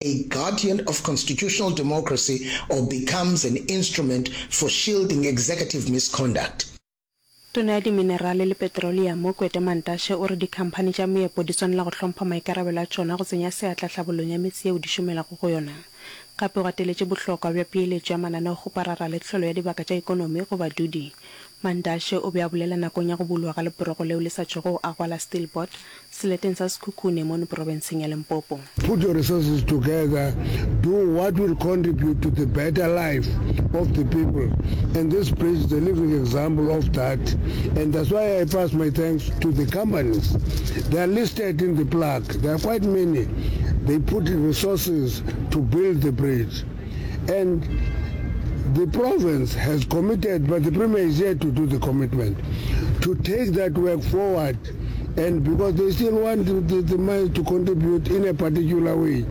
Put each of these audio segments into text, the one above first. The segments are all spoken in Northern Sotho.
a guardian of constitutional democracy or becomes an instrument for shielding executive misconduct. Tona ya Diminerale le Petroleamo, Kwete Mantashe, o re dikhamphani tša meepo di swanela go hlompha maikarabelo a tšona go tsenya seatla tlhabolong ya metse yeo di šomelago go yona. Gape o gateletše bohlokwa bja peeletšo ya mananeo go parara le tlholo ya dibaka tša ekonomi go badudi Mantashe o be a bolela nakong ya go bulwa ga leporogo leo le sa tšwego go agwa la Steelbot seleteng sa Sekhukhune mono porobenseng ya Limpopo. Put your resources together, do what will contribute to the better life of the people and this bridge is a living example of that and that's why I pass my thanks to the companies they are listed in the plaque, there are quite many, they put resources to build the bridge. and the province has committed, but the Premier is yet to do the commitment to take that work forward and because they still want the, the, the mines to contribute in a particular way.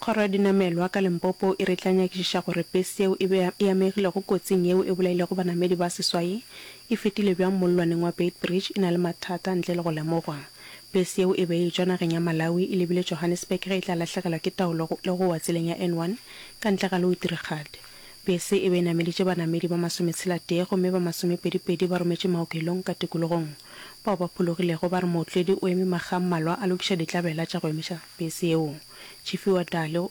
Kgoro ya dinamelwa ka Limpopo e re e tla nyakišiša gore bese yeo e be e amegilego kotsing yeo e bolailego banamedi ba seswai e fetile bjang mollwaneng wa Beitbridge e na le mathata ntle le go lemogwa. Bese yeo e be e tšwa nageng ya Malawi e lebile Johannesburg ge e tla lahlegelwa ke taolo le go wa tseleng ya N1 ka ntle ga Louwtrigad. Bese e be e nameditše banamedi ba masometshela-tee gomme ba masomepedi-pedi ba rometše maokelong ka tikologong. Bao ba phologilego ba re mootledi o eme makga a mmalwa a lokiša ditlabela tša go emiša bese yeo. Chifiwa Dali o.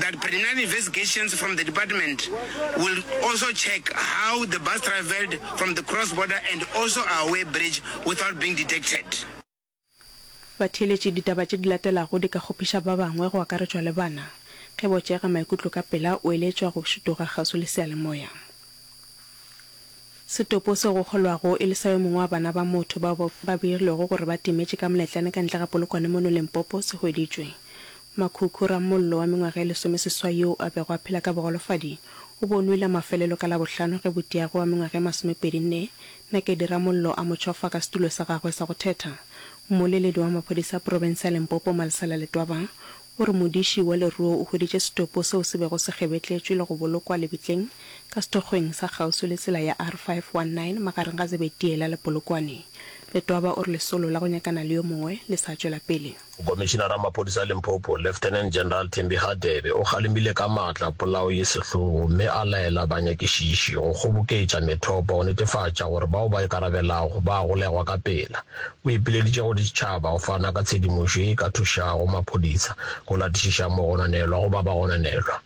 that preliminary investigations from the department will also check how the bus travelled from the cross border and also our way bridge without being detected. Batheeletši ditaba tše di latelago di ka kgopiša ba bangwe go akaretšwa le bana. Ge bo tšeega maikutlo ka pela o eletšwa go šutuga kgauswi le seyalemoya. Setopo seo go kgolwago e le sa yo mongwe wa bana ba motho bao ba beilwego gore ba timetše ka moletlane ka ntle ga polokwane mono Limpopo se hweditšwe. Makhukhu, ramollo wa mengwaga e lesomeseswai yoo a bego a phela ka bogolofadi, o bo o nwele a mafelelo ka Labohlano ge Botiagwe wa mengwaga e masomepedi-nne, Nakedi Ramollo, a mo tšhofa ka setulo sa gagwe sa go thetha. Mmoleledi wa maphodisa a profense ya Limpopo, Malisela Letwaba, o re modiši wa leruo o hweditše setopo seo se bego se kgebetletšwe le go bolokwa lebitleng ka sethokgweng sa kgauswi le tsela ya R519 magareng ga Zebediela le Polokwane. Letwaba o re lesolo la go nyakana le yo mongwe le sa tšwela pele. Komišinara wa Maphodisa a Limpopo, Lieutenant General Thembi Hadebe o kgalemile ka matla polao ye sehlogo mme a laela banyakišiši go kgoboketša methopo go netefatša gore bao ba ikarabelago ba a golegwa ka pela. O ipileditše go ditšhaba go fana ka tshedimošo ye e ka thušago maphodisa go latišiša mogononelwa go ba bagononelwa.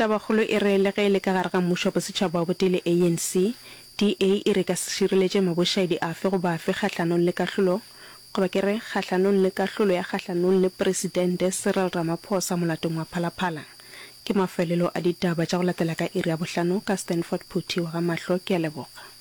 Tabakgolo e re le ge e le ka gare ga mmušo wa bosetšhaba wa Botele ANC, DA e re e ka se šireletše mabošaedi afe goba afe kgahlanong le kahlolo, goba ke re kgahlanong le kahlolo ya kgahlanong le Presidente Cyril Ramaphosa molatong wa Phalaphala. Ke mafelelo a ditaba tša go latela ka iri ya bohlano ka Stanford Phuthi wa ga Mahlo. Ke a leboga.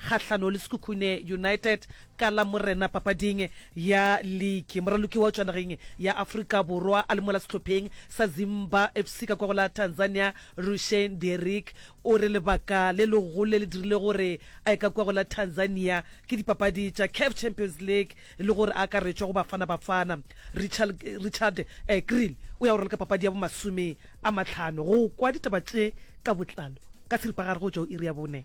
kgahlano le Sekhukhune United ka Lamorena papading ya liki. Moraloki wa tšwa nageng ya Afrika Borwa a le mola sehlopheng sa Zimba FC ka kwa go la Tanzania, Rushane Derrick o re lebaka le legolo le le dirilego gore a ye ka kwa go la Tanzania ke dipapadi tša Caf Champions League le gore a akaretšwa go Bafana Bafana. Richard Kriel o ya go raloka papadi ya bomasome a matlhano. Go kwa ditaba tše ka botlalo ka seripagare go tšwa go iri ya bone.